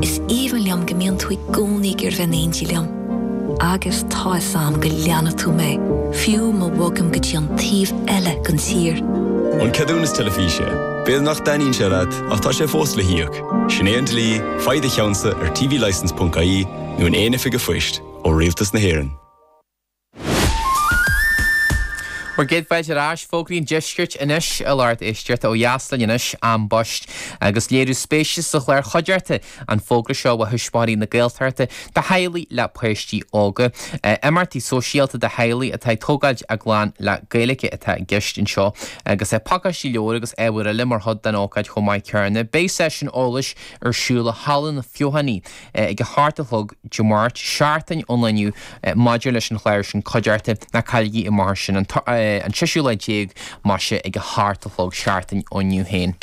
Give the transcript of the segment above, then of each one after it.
Is aoibhinn liom go mbíonn tú i gcónaí ag breathnú in éindí liom. Agus tá fhios a'm go leanfaidh tú mé, fiú má bhogaim go dtí an taobh eile den tír. An ceadúnas teilifíse. B'fhéidir nach dtaitníonn sé leat ach tá sé fós le híoc. Sin é an dlí, faigh do cheannsa ar tvlicence.ie nó in aon oifig a' phoist ó Rialtas na hÉireann. Bhur gcéad fáilte ar ais, Fógraí an Deiscirt anois, a lucht éisteachta ó dheas linn anois, am baist agus léiriú spéise sa chlár chuideachta an fógra seo ó Thuismitheoirí na Gaeltachta do theaghlaigh le páistí óga. Imeachtaí sóisialta do theaghlaigh atá ag tógáil a gclann le Gaeilge atá i gceist anseo agus pacáistí leabhar agus ábhair eile mar chuid den ócáid chomh maith céanna. Beidh seisiún eolais ar siúl i Halla na Feothanaí. ag a hocht a chlog Dé Máirt, seachtain ón lá inniu, maidir leis an chlár sin cuideachta, ná cailligí é mar sin an séisiú lá déag más ea ag a hocht a chlog seachtain ón inniu féin.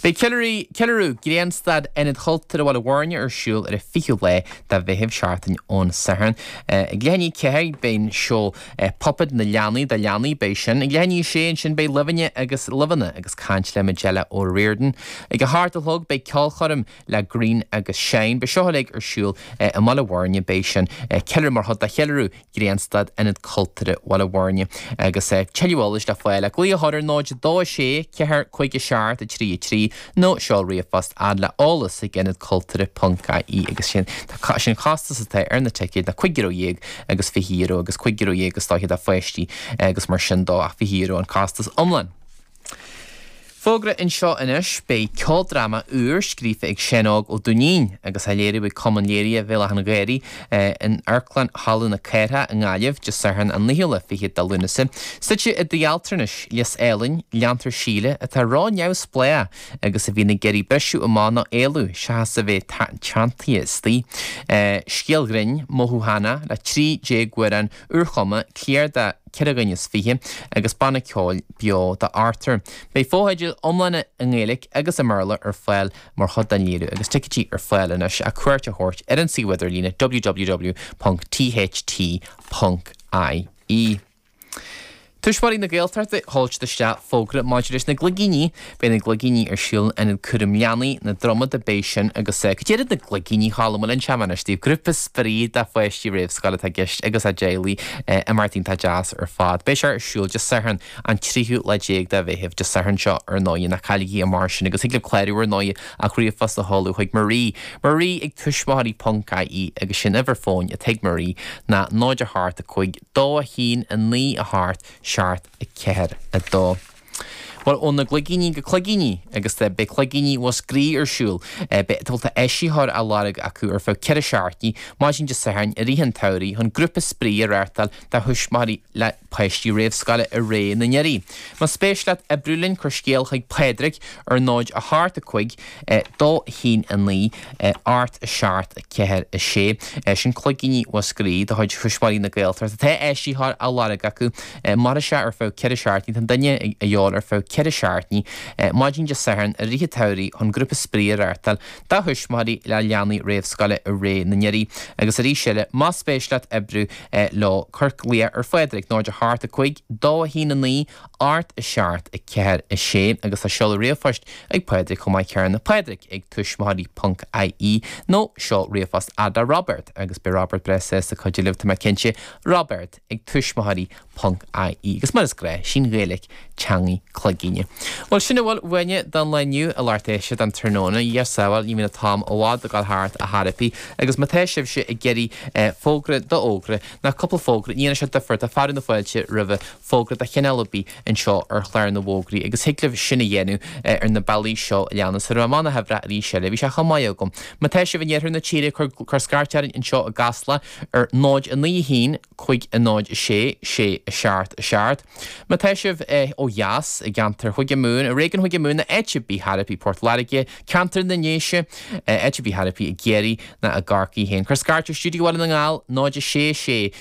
Beidh ceiliúradh Ghrianstad Ionad Chultúrtha Bhaile Bhuirne ar siúl ar an 20ú lá de Mheitheamh, seachtain ón Satharn. Ag leath i ndiaidh ceathair beidh an seó Puppet na Leanaí, do leanaí beidh sin. Ag leath i ndiaidh a sé ansin beidh Luibheanna agus Luibheanna agus caint le Majella O'Riordan. Ag a hocht a chlog beidh ceolchoirm. le Greene agus Shine. Beidh seo uilig ar siúl i mBaile Bhuirne. Beidh sin ceiliúradh mar chuid de cheiliúradh Ghrianstad, Ionad Cultúrtha Bhaile Bhuirne. Agus tuilleadh eolais le fáil ach glaoch orthu ar 02 6 4 5 7 3 3 nó seol ríomhphost fhad le eolas ag ionadculturtha.ie. Agus is é an costas atá ar na ticéid ná €15 agus €20 agus €15 is dóiche do pháistí agus mar sin dó ach €20 an costas iomlán. Fógra anseo anois, beidh ceoldráma úr scríofa ag Seán Óg Ó Duinnín agus á léiriú ag Cumann Léirithe Bhéal Átha'n Ghaorthaidh in Amharclann Halla na Cathrach i nGaillimh, Dé Sathairn an 29ú de Lúnasa. Suite i dtigh altranais Lios Eilein, leantar Síle, atá ró-neamhspleách agus a bhíonn ag iarraidh briseadh amach nó éalú seachas a bheith teanntaithe istigh. Scéal ghrinn, mothúchánach le 13 amhrán úrchumtha, cliar de cheithre dhuine is fiche agus banna ceoil beo d'ochtar. Beidh fotheidil iomlána i nGaeilge agus i mBéarla ar fáil mar chuid den léiriú agus ticéidí ar fáil anois ach cuairt a thabhairt ar an suíomh idirlíne www.tht.ie. Tuismitheoirí na Gaeltachta ag tabhairt isteach fógra maidir leis na gligíní, beidh na gligíní ar siúl in Ionad Cúraim Leanaí, na Dromoda, beidh sin agus cad iad na gligíní thall, bhuel inseoidh mé anois daoibh? Grúpa spraoi do pháistí réamhscoile atá i gceist agus a dteaghlaigh imeachtaí iontach deas ar fad. Beidh sé ar siúl Dé Sathairn an tríú lá déag de Mheitheamh, Dé Sathairn seo ar ndóigh, ná cailligí é mar sin agus thig libh clárú ar ndóigh ach ríomhphost a sheoladh chuig Marie, Marie ag tuismitheoirí ponc ie agus is í an uimhir fóin atá ag Marie ná 0 4 5 2 1 9 8 7 4 2 Bhuel, ó na gligíní go cloigíní agus beidh cloigíní Mhúscraí ar siúl. Beidh bhuel tá áisitheoir á lorg acu ar feadh ceithre seachtaine, maidin Dé Sathairn i rith an tsamhraidh, chun grúpa spraoi a reáchtáil do thuismitheoirí le páistí réamhscoile i Réidh na nDoirí. Más spéis leat oibriú linn, cuir scéal chuig Pádraig ar 0 8 5 2 1 9 8 7 4 6 Sin cloigíní Mhúscraí de chuid Thuismitheoirí na Gaeltachta. Tá áisitheoir á lorg acu. Mar is ea, ar feadh ceithre seachtaine, tá duine de dhíobháil ar feadh ceithre seachtaine, maidin Dé Sathairn i rith an tsamhraidh, chun grúpa spraoi a reáchtáil do thuismitheoirí le leanaí réamhscoile i Réidh na nDoirí agus arís eile más spéis leat oibriú leo. Cuir glaoch ar Phádraig 0 8 5 2 1 9 8 7, 4, 6 agus tá seoladh ríomhphoist ag Pádraig chomh maith céanna, Pádraig ag tuismitheoirí ponc IE nó seol ríomhphost fhad le Roibeard agus beidh Roibeard breá sásta cuidiú libh, tá mé cinnte. Roibeard ag tuismitheoirí ponc IE. Agus mar is gnách, is í an Ghaeilic teangaidh Cloigíní. Bhuel, sin a bhfuil uainne don lá inniu a lucht éisteachta don tráthnóna. Dhia sábháil, ní bhíonn an t-am i bhfad ag dul thart, ar chor ar bith. Agus má tá sibhse ag iarraidh fógra d'fhógra, nó cúpla fógra, ní dhéanfaidh sé difear, tá fearadh na fáilte roimhe. fógra de chineál ar bith anseo ar Chlár na bhFógraí agus thig libh sin a dhéanamh ar na bealaí seo a leanas. Déarfaidh mé na huimhreacha arís eile. Bhí sé chomh maith agam. Má tá sibh in iarthar na tíre, cuir scairt orainn anseo i gCasla ar 0 9 1 506 677. Má tá sibh ó dheas, i gceantar Chúige Mumhan, i réigiún Chúige Mumhan nó áit ar bith thart faoi Port Láirge, ceantar na nDéise, áit ar bith thart faoi i gCiarraí ná i gCorcaigh féin, cuir scairt ar Stiúideo Bhaile na nGall, 0 6 6